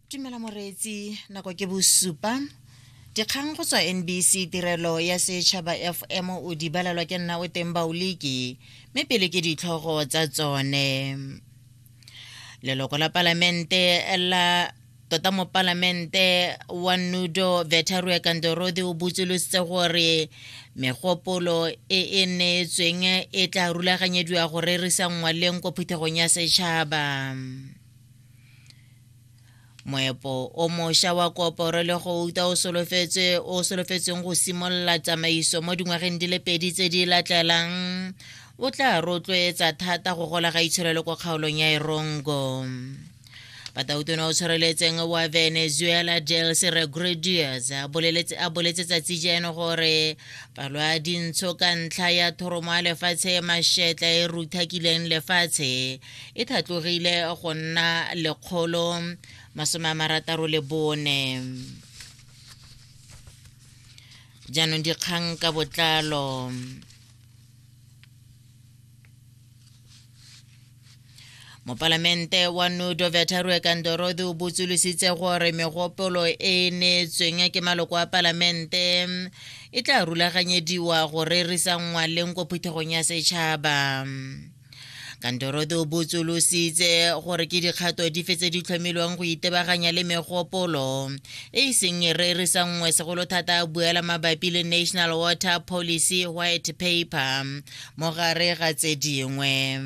tumela moreetsi nako ke bosupa dikgang go tswa nbc tirelo ya setšhaba fm o di balelwa ke nna o teng baoliki mme pele ke ditlhogo tsa tsone leloko la palamente la tota mo palamente wa nudo vetarue kandorodi o botsolositse gore megopolo e e neetsweng e tla rulaganyediwa go rerisa ngwaleng ko phuthegong ya setšhaba moepo o mošwa wa koporo le go uta o solofetsweng go simolola tsamaiso mo dingwageng di le pedi tse di latlelang o tla rotloetsa thata go gola ga itsholelo kwa kgaolong ya erongo batautona o tshwareletseng wa venezuela jels regrudiers a boletse tsatsi jeno gore balwa dintsho ka ntlha ya thoromo ya lefatshe mašetla e ruthakileng lefatshe e thatlogile go nna lekgolo masome a marataro le bone jaanong dikgang ka botlalo mopalamente wa nudo vetarue kandorodi o botsolositse gore megopolo e e neetsweng ke maloko a palamente e tla rulaganyediwa go rerisa ngwaleng ko phuthegong ya setšhaba kandorodi o botsolositse gore ke dikgato dife tse di tlhomilweng go itebaganya le megopolo e e seng e rerisa nngwe segolo thata a buela mabapi le national water policy white paper mo gare ga tse dingwe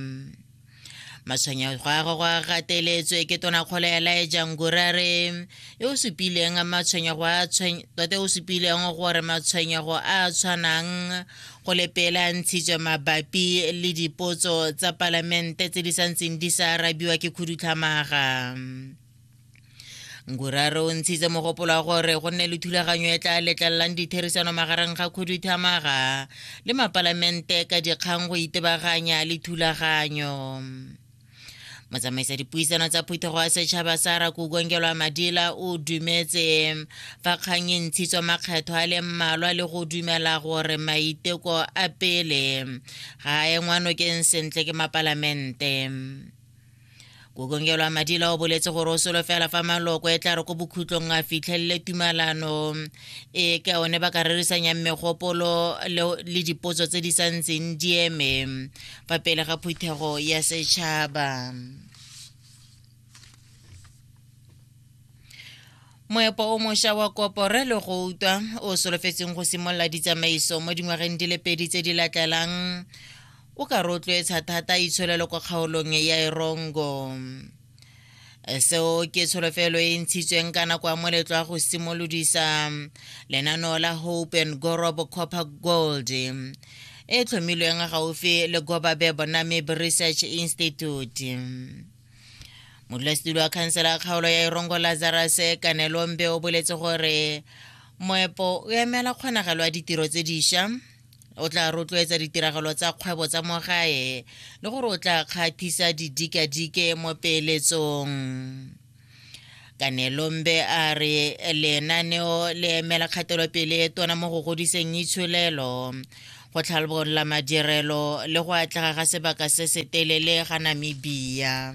matshwenyego a gagwe a gateletswe ke tonakgolo ya laeja ngurare e o supileng matshwenyego a tota o supileng gore matshwenyego a a tshwanang go lepela ntshitswe mabapi le dipotso tsa palamente tse di santseng di sa arabiwa ke khudutlhamaga ngurare o ntshitse mogopolo wa gore go nne le thulaganyo e tla letlelelang ditherisano magareng ga khuduthamaga le mapalamente ka dikgang go itebaganya le thulaganyo motsamaisa dipuisano tsa phuthego ya setšhaba sa rakukongelwa madila o dumetse fa kgang e ntshitswa makgetho a le mmalwa le go dumela gore maiteko a pele ga a engwanokeng sentle ke mapalamente kokongelwa madila o boletse gore o solofela fa maloko e tla re ko bokhutlong a fitlhelele tumalano e ka one ba ka rerisanyang megopolo le dipotso tse di sa ntseng di eme fa pele ga phuthego ya setšhaba moepo o mošwa wa kopore le go utwa o solofetseng go simolola ditsamaiso mo dingwageng di le pedi tse di latelang O ka rotloetsa thata itsholelo kwa kgaolong ya Erongo. Seo ke tsholofelo e ntshitsweng ka nako ya moletlo wa go simolodisa lenaneo la Hope and Gorob Copper Gold e tlhomilweng gaufi le Gobabe Bonamib Research Institute. modulasetilo wa khansela ya kgaolo ya erongo lazarus kanelombe o boletse gore moepo o emela kgonagalo ya ditiro tse diša o tla rotloetsa ditiragalo tsa kgwebo tsa mo gae le gore o tla kgathisa didikadike mo peeletsong kanelombe a re lenaneo le emela kgatelopele e tona mo go godiseng itsholelo go tlhalbolola madirelo le go atlega ga sebaka se se telele ga namibia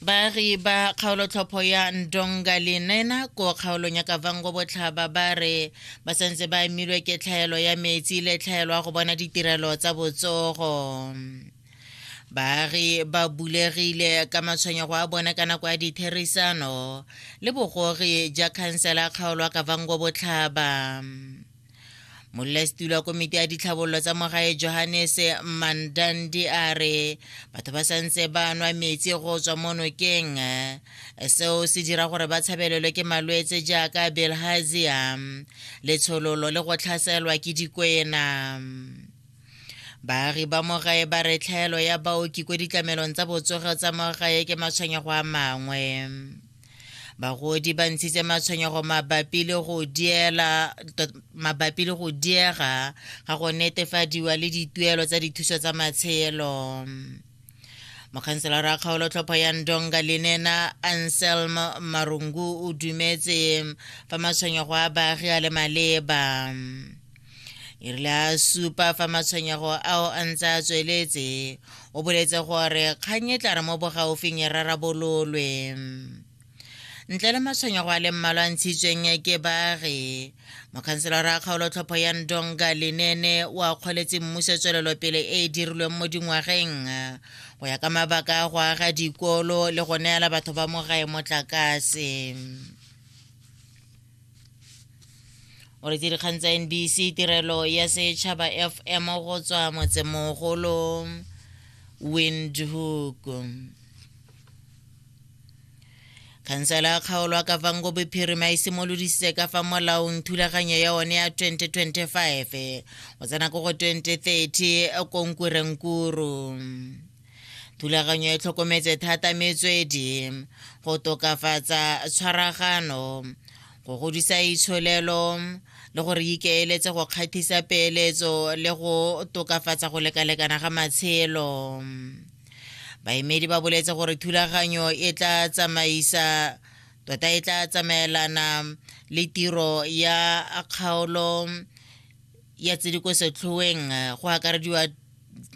baagi ba kgaolotlhopho ya ndonga le nena ko kgaolong ya kavango botlhaba ba re ba santse ba amilwe ke tlhaelo ya metsi le tlhaelo ya go bona ditirelo tsa botsogo baagi ba bulegile ka matshwenyego a bone ka nako ya ditherisano le bogogi ja khansela kgaolo ya kavango botlhaba molesetilo wa komiti ya ditlhabololo tsa mogae johannes mandandi a re batho ba santse ba nwa metsi go tswa mo nokeng seo se dira gore ba tshabelelwe ke malwetse jaaka belhazia letshololo le go tlhaselwa ke dikwena baagi ba mogae ba re tlhaelo ya baoki ko ditlamelong tsa botsogo tsa mogae ke matshwenyego a mangwe bagodi ba ntshitse matshwenyego mabapi le go diela mabapi le go diega ga go netefadiwa le dituelo tsa dithuso tsa matshelo mokhanselara wa kgaolotlhopho ya ndonga lenena anselm marungu o dumetse fa matshwenyego a baagi a le maleba e rile a supa fa matshwenyego ao a ntse a tsweletse o boletse gore kgang e tla re mo bogaufing e rarabololwe ntle le matshwenyego a le mmalwa a ntshitsweng ke baagi mokhanselara a kgaolotlhopho ya ndonga lenene o a kgoletse mmuso tswelelopele e e dirilweng mo dingwageng go ya ka mabaka a go aga dikolo le go neela batho ba mo gae motlakase o re dikgang tsa nbc tirelo ya setšhaba fm go tswa motsemogolo windhoek khansela ya kgaolo ya kavango bophirima e simolodisitse ka fa molaong thulaganyo ya one ya 2025 go tsena ko go 2030 konkurenkuru thulaganyo e tlhokometse thata metswedi go tokafatsa tshwaragano go godisa itsholelo le gore ikeeletse go kgathisa peeletso le go tokafatsa go lekalekana ga matshelo baemedi ba boletse gore thulaganyo e tla tsamaisa tota e tla tsamaelana le tiro ya kgaolo ya tse di ko setlhoeng eh, go akarediwa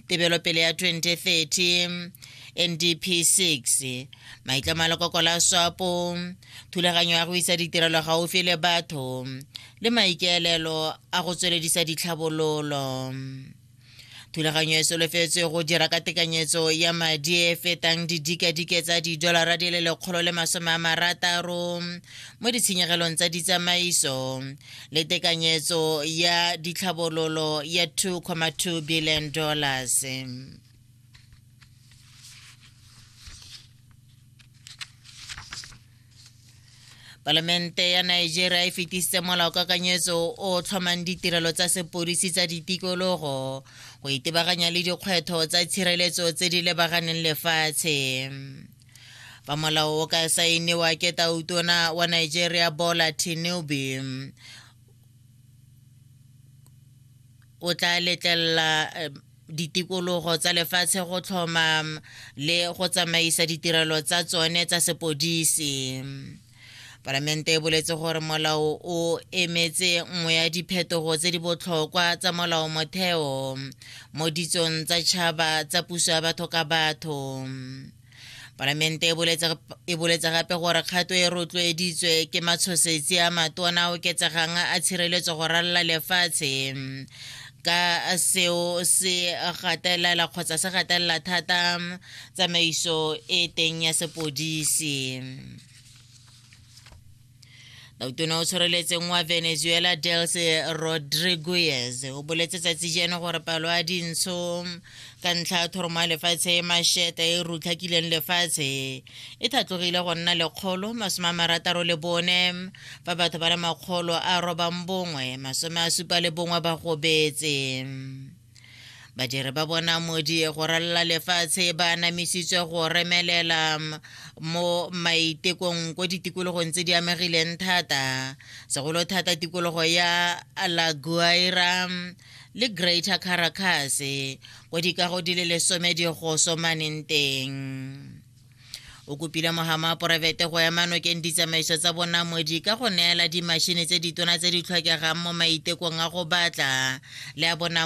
tebelopele ya 2030 ndp 6 maitlamo a lekoko la swapo thulaganyo ya go isa ditirelo gaufi le batho le maikaelelo a go tsweledisa ditlhabololo thulaganyo e solofetswe go dira ka tekanyetso ya madi e fetang didikadike tsa didolara di le lekgolo le masome a marataro mo ditshenyegelong tsa ditsamaiso le tekanyetso ya ditlhabololo ya 2,2 billion dollars palamente ya nigeria e fetisitse molao kakanyetso o tlhomang ditirelo tsa sepodisi tsa ditikologo go itebaganya le dikgwetho tsa tshireletso tse di lebaganeng lefatshe fa molao o ka saeniwa ke tautona wa nigeria bola tinubu o tla letlelela eh, ditikologo tsa lefatshe go tlhoma le go tsamaisa ditirelo tsa tsone tsa sepodisi palamente e boletse gore molao o emetse nngwe ya diphetogo tse di botlhokwa tsa molao motheo mo ditsong tsa tšhaba tsa puso ya batho ka batho palamente e boletse gape gore kgato e rotloeditswe ke matshosetsi a matona a oketsegang a tshireletso go ralala lefatshe ka seo se gatelela kgotsa se gatelela thata tsamaiso e teng ya sepodisi tautona o tshwareletseng wa venezuela delce rodriguez o boletse tsatsi jeno gore palo ya dintsho ka ntlha ya thoromo ya lefatshe e masheta e rutlhakileng lefatshe e thatlogile go nna lekgolo masome a marataro le bone fa batho ba le makgolo a robang bongwe masome a supa le bongwe ba gobetse badiri ba bona modi go ralala lefatshe ba anamisitswe go remelela mo maitekong ko ditikologong tse di amegileng thata segolo thata tikologo ya laguaira le greater caracas ko dikago di le lesome di go somaneng teng o kopile mogama wa poraefete go ema nokeng ditsamaiso tsa bonamodi ka go neela dimashini tse ditona tse di tlhokegang mo maitekong a go batla le a bona